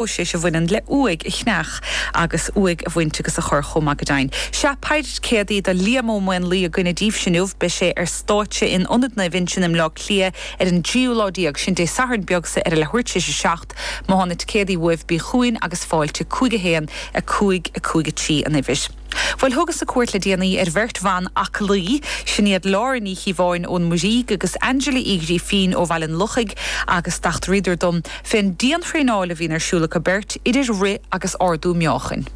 próiseas a bhaineann le uaigh a cheannach agus uaigh a bhaint agus a chur chomh maith go deimhin. Sea, péire ticéadaí do Liam Ó Maonlaí againn daoibhse inniu. Beidh sé ar stáitse in Ionad Naomh Uinseann i mBleá Cliath ar an dtríú lá déag, sin Dé Sathairn beag so agus le tabhairt leis a seacht. Má tá na ticéadaí uaibh, bí chugainn agus fáilte, 5 1 5 5 3 an uimhir. Bhuel, thugas-sa cuairt le déanaí ar bheirt bhan aclaí, sin iad Laura Ní Chiobháin ón Muirígh agus Angela Uí Ghrifín ó Bhaile an Lochaigh agus d'eachtraíodar dom fén dianthraenáil a bhíonn ar siúl acu beirt, idir rith agus ardú meáchain.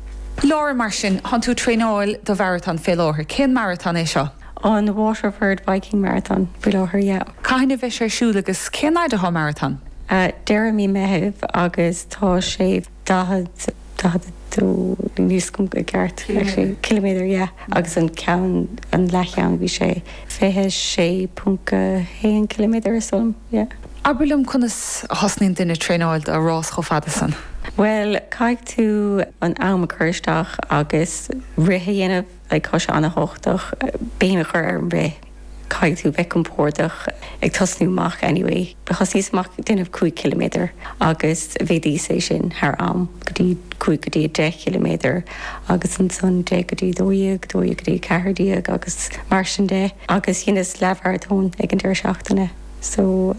Laura, mar sin, tánn tú ag traenáil do mharatón fé láthair. Cén maratón é seo? An Waterford Viking Marathon faoi láthair, yeah. Cathain a bheidh sé ar siúl agus cén áit athá an maratón? Deireadh mí Meithimh agus tá sé. 40, 42 níl 's agam i gceart actually, ciliméadar yeah agus an ceann, an leathcheann bhí sé 26.1 ciliméadar is dóigh liom, yeah. Abair liom conas a thosnaíonn duine traenáil do rás chomh fada san? Bhuel caithfidh tú an am a cur isteach agus rith a dhéanamh. Bhuel tá sé an-tábhachtach béim a chur ar an rith. Caithfidh tú bheith compórdach ag tosnú amach anyway. Thosnaíos amach ag déanamh 5 km agus mhéadaíos é sin thar am go dtí 5 go dtí 10 km agus ansan 10 go dtí 12, 12 go dtí 14 agus mar sin de agus dheineas leath-mharatón ag an deireadh seachtaine so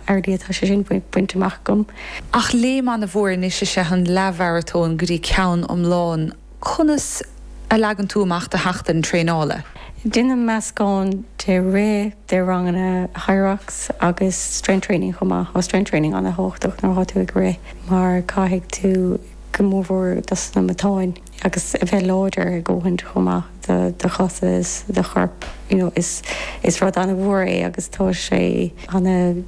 already tá sé sin bainte amach agam. Ach léim an-mhór anois is ea an leath-mharatón go dtí ceann iomlán. Conas a leagann tú amach do sheachtain traenála? Déanaim meascán de rith, de ranganna Hyrox agus strength training chomh maith. Tá strength training an-tábhachtach nuair atá tú ag rith mar caithfidh tú go mór mhór dos na matáin agus a bheith láidir a dhóthaint chomh maith do do chosa is do chorp you know is is rud an-mhór é agus tá sé an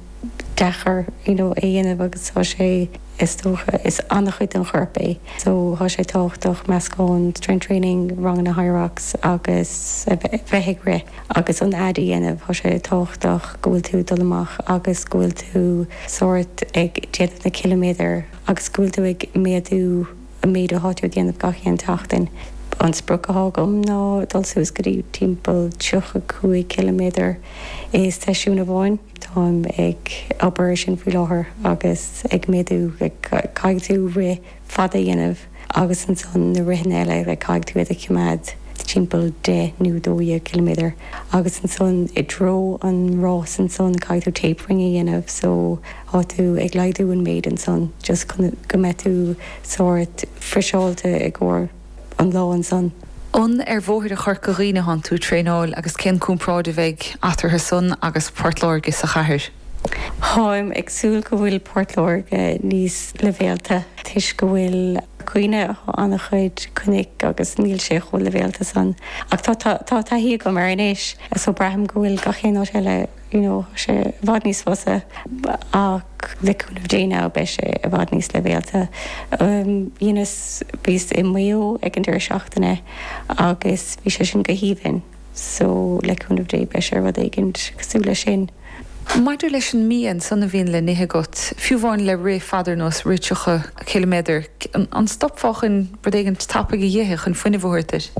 deacair you know a dhéanamh agus tá sé is dócha is an-chuid den chorp é so tá sé tábhachtach meascán strength training, ranganna Hyrox agus a bheith bheith ag rith agus an fhad a dhéanamh tá sé tábhachtach go bhfuil tú dul amach agus go bhfuil tú sórt ag déanamh na ciliméadar agus go bhfuil tú ag méadú an méid atá tú ag déanamh gach aon tseachtain. An sprioc atá agam ná dul suas go dtí timpeall 35 ciliméadar i seisiún amháin. Táim ag obair ar sin faoi láthair agus ag méadú. Caithfidh tú rith fada a dhéanamh agus ansan na ritheanna eile like caithfidh tú iad a choimeád timpeall deich nó dó dhéag ciliméadar agus ansan i dtreo an rás ansan caithfidh tú tapering a dhéanamh so tá tú ag laghdú an méid ansan just chun go mbeidh tú sórt friseáilte i gcomhair an lá ansan. An ar bhóithre Chorca Dhuibhne thánn tú traenáil agus cén chomparáid a bheidh eatarthu san agus Port Láirge sa chathair? Táim ag súil go bhfuil Port Láirge níos leibhéalta toisc go bhfuil, you know, an-chuid cnoic agus níl sé chomh leibhéalta san ach tá taithí agam air anois so braithim go bhfuil gach aon áit eile you know tá sé i bhfad níos fusa so le cúnamh Dé now beidh sé i bhfad níos leibhéalta. Dheineas, bhíos i Maigh Eo ag an deireadh seachtaine agus bhí sé sin go haoibhinn so le cúnamh Dé beidh sé rud éigint cosúil leis sin. Maidir leis an mbia, ansan a bhíonn le n-ithe agat, fiú amháin le rith fada ar nós daichead a dó ciliméadar, an stopfá chun. Rud éigint tapaidh a dh'ithe chun fuinneamh a thabhairt duit.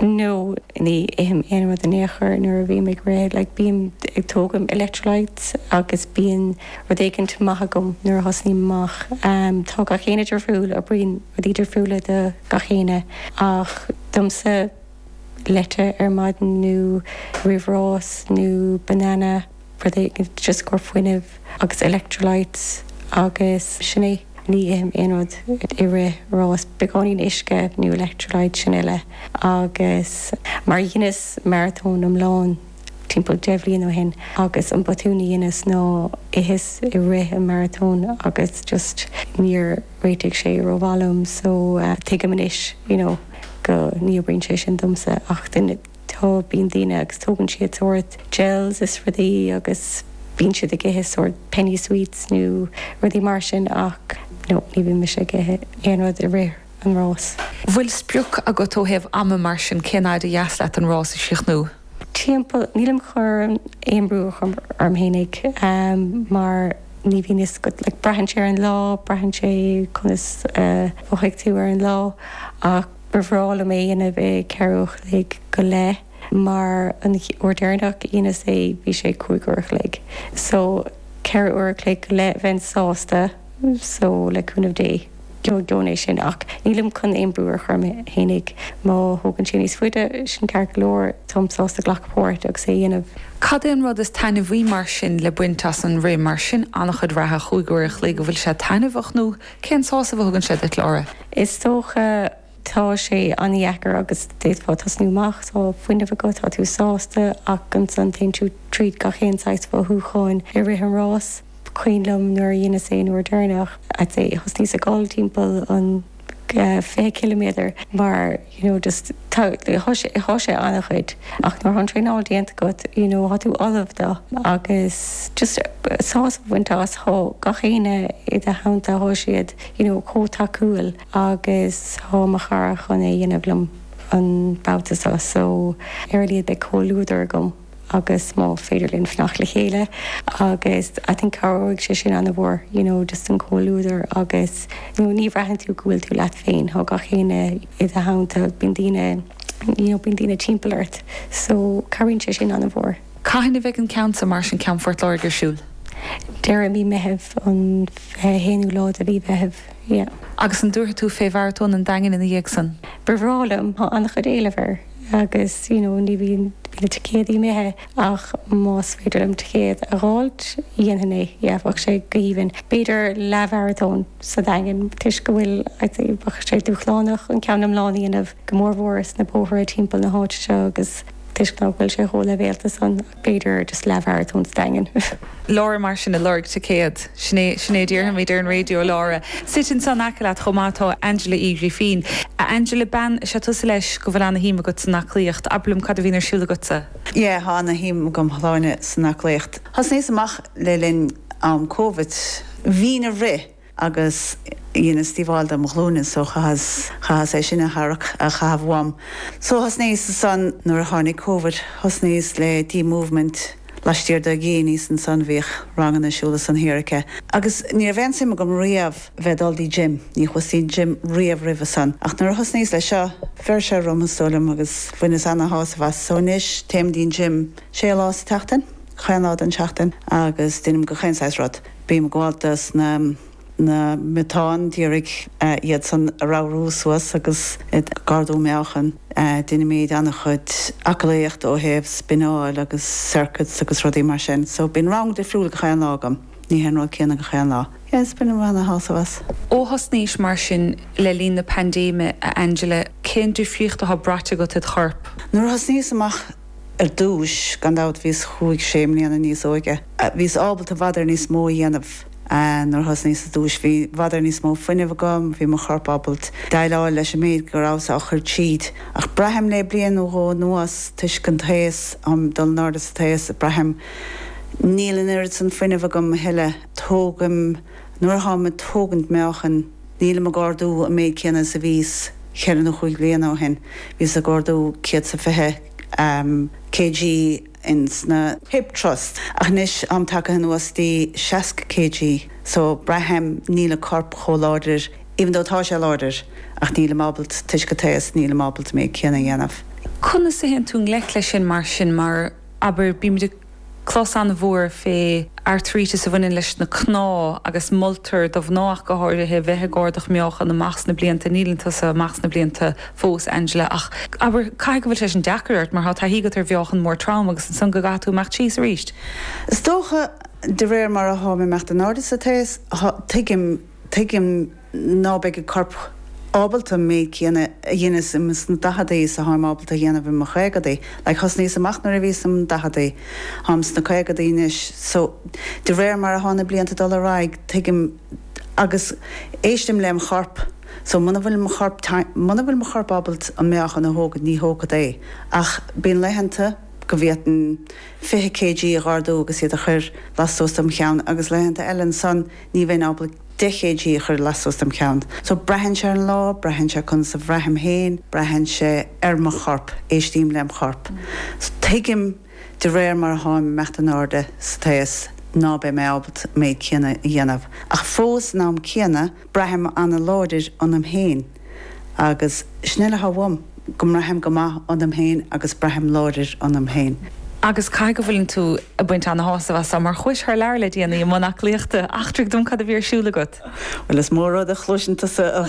No, ní ithim aon rud in aon chor nuair a bhím ag rith. Like, bím ag tógaim electrolytes agus bíonn rud éigint maith agam nuair a thosnaím amach. Em, tá gach éinne difriúil, oibríonn rudaí difriúla do gach éinne ach domsa, leite ar maidin nó roimh rás nó banana, rud éigint just i gcomhair fuinneamh agus electrolytes agus sin é. Ní ithim aon rud i rith ráis, beagáinín uisce nó electrolyte, sin uile. Agus mar dheineas maratón iomlán timpeall deich bhliain ó shin agus an botún a dheineas ná d'itheas i rith an maratón agus just níor réitigh sé rómhaith liom so tuigim anois you know go ní oibríonn sé sin domsa ach duine Tá, bíonn daoine agus tógann siad sórt gels is rudaí agus bíonn siad ag ithe sórt penny sweets nó rudaí mar sin ach no, ní bhímse ag ithe aon rud i rith an rás. Bhfuil sprioc agat ó thaobh ama mar sin, cén fhaid ba dheas leat an rás a chríochnú? Timpeall, nílim chun aon brú a chur orm fhéinig mar ní bhíonn fhios agat, like braitheann sé ar an lá, braitheann sé conas a mhothóidh tú ar an lá ach. Ba bhreá liom é a dhéanamh i ceithre uair a chloig go leith mar an uair deireanach a dheineas é bhí sé cúig uair a chloig so ceithre uair a chloig go leith bheinn sásta so le cúnamh Dé gheobhad é sin ach nílim chun aon brú a chur orm fhéinig má thógann sé níos faide sin ceart go leor táim sásta a ghlacadh páirt agus é a dhéanamh. Cad é an rud is taitneamhaí mar sin le baint as an rith mar sin an-chuid reatha cúig uair a chloig an bhfuil sé taitneamhach nó Cén sásamh a thugann sé duit, Laura? Is dócha tá sé an-dheacair agus d'fhéadfá tosnú amach, tá fuinneamh agat, tá tú sásta ach ansan téann tú tríd gach aon saghas mhothúcháin i rith an rás. Is cuimhin liom nuair a dheineas é an uair deireanach, thosnaíos ag gol timpeall an 20 ciliméadar mar. you know just tá sé an-chuid ach nuair atá an traenáil déanta agat you know tá tú ullamh do agus just sásamh a bhaint as tá gach éine i do theannta tá siad you know chomh tacúil agus tá mo chara chun é a dhéanamh liom an babhta seo so ar a laghad beidh comhluadar agam. agus má féidir linn fanacht le chéile agus I think cabhróidh sé sin ana-mhór you know just an comhluadar agus you know ní bhraitheann tú go bhfuil tú leat féin thá gach éinne i do theannta bíonn daoine you know bíonn daoine timpeall ort so cabhraíonn sé sin ana-mhór. Cathain a bheidh an ceann san, maratón ceann Phort Láirge ar siúl? Deireadh mí Meithimh, an fiche haonú lá de mhí Mheithimh, yeah. Agus an dtabharfaidh tú fé mharatón an Daingin ina dhiaidh san? Ba bhreá liom, thá ana-chuid éileamh air. agus you know bíonn na ticéadaí imithe ach más féidir liom ticéad a dh'fháilt dhéanfaidh mé yeah bheadh sé go haoibhinn. B'fhéidir leath-mharatón sa Daingean toisc go bhfuil I'd say bheadh sé dúshlánach an ceann iomlán a dhéanamh go mórmhór sna bóithre timpeall na háite seo agus toisc nach bhfuil sé chomh leibhéalta san. b'fhéidir just leathmharatón sa Daingean. Laura, Mar sin, ag lorg ticéad. Sin é, sin é a déarfaimid ar an raidió. Laura, Suite ansan in aice leat chomh maith tá Angela Uí Ghrifín. A Angela bean, is ea tusa leis go bhfuil ana shuim agat san aclaíocht. Abair liom cad a bhíonn ar siúl agatsa? Yeah, tá ana shuim agam thar n-ais san aclaíocht. Thosnaíos amach le linn am Covid. Bhínn ag rith. agus dheineas díobháil dom' ghlúine so chaitheas, chaitheas é sin a tharrac, a chaitheamh uaim. So thosnaíos ansan, nuair a tháinig Covid, thosnaíos le D Movement laistiar de dhíon aníos ansan, bhíodh ranganna ar siúl ansan thiar aici. Agus ní raibh aon suim agam riamh bheith ag dul dtí gym, ní chuas dtí gym riamh roimhe san. Ach nuair a thosnaíos le seo, bheir sé orm is dóigh liom agus bhaineas ana-shásamh as. So anois, téim dtí'n gym sé lá sa tseachtain, chaon lá den seachtain agus deinim go chaon saghas rud. Bím ag gabháil dos na matáin, d'iarraidh iadsan a ramhrú suas agus ag ardú meáchain. Deinimíd an-chuid aclaíocht ó thaobh spineáil agus circuits agus rudaí mar sin. So bíonn rang difriúil gach aon lá agam, ní hé an rud céanna gach aon lá. Yes, bainim an-shásamh as. Ó thosnaís mar sin le linn na paindéime, a Angela, cén difríocht atá braite agat id chorp? Nuair a thosnaíos amach Ar dtúis, gan dabht, bhíos chúig, sé bliana níos óige. Bhíos ábalta i bhfad níos mó a dhéanamh nuair a thosnaíos ar dtúis. Bhí i bhfad níos mó fuinnimh agam, bhí mo chorp ábalt déileáil leis an méid go rabhas á chuir tríd. Ach braithim le bliain nó dhó anuas, toisc an t-aos, am, dul in airde san aos, braithim níl an oiread san fuinnimh agam a thuilleadh. Tógaim, nuair atáim ag tógaint meáchain, Nílim ag ardú an méid céanna is a bhíos cheithre nó chúig bhliana ó shin. Bhíos ag ardú céad 's a fiche kg ins na. Hip Thrust, ach anois táim tagtha anuas dtí seasca kg, so braithim níl an corp chomh láidir, even though tá sé láidir, ach nílim ábalta, toisc an t-aos, nílim ábalta méid céanna a dhéanamh. Conas a théann tú i ngleic leis sin mar sin, mar, abair, bímid ag. clos an-mhór fé airtríteas a bhaineann leis na cnámha agus moltar do mhná ach go háirithe bheith ag ardach meáchan amach sna blianta, níleann tusa amach sna blianta fós, Angela, ach abair, caithfidh go bhfuil sé sin deacair ort mar tá taithí agat ar mheáchan mór trom agus ansan go gcaithfidh tú imeacht síos arís? Is dócha, de réir mar atáim imeacht in airde sa t-aos, tuigim, tuigim. ná beidh an corp ábalta an méid céanna a dheineas ins na daicheadaí is atáim ábalta a dhéanamh i mo chaogadaí, like thosnaíos amach nuair a bhíos sna daicheadaí, táim sna caogadaí anois, so de réir mar atá na blianta ag dul ar aghaidh tuigim agus éistim lem' chorp, so muna, muna bhfuil mo chorp ábalta an meáchan a thógaint ní thógfad é ach bíonn laethanta go bhféadfainn 20 kg a dh'ardú agus iad a chur lastuas dem' cheann agus laethanta eile ansan, Ní bheinn ábalta deich kg a chur lastuas dem cheann. So, braitheann sé ar an lá, braitheann sé conas a bhraithim féin, braitheann sé ar mo chorp, éistím lem chorp. So, tuigim de réir mar a tháim imeacht in airde sa t-aos ná beidh mé ábalta an méid céanna a dhéanamh. Ach fós, san am céanna, braithim ana-láidir ionam féin. Agus sin é atá uaim go mbraithim go maith ionam féin agus braithim láidir ionam féin. Agus caithfidh go bhfuil tú ag baint ana-shásamh as so, mar chuais thar lear le déanaí i mbun aclaíochta. Eachtraigh dom cad a bhí ar siúl agat? Bhuel, is mó rud a chloiseann tusa a.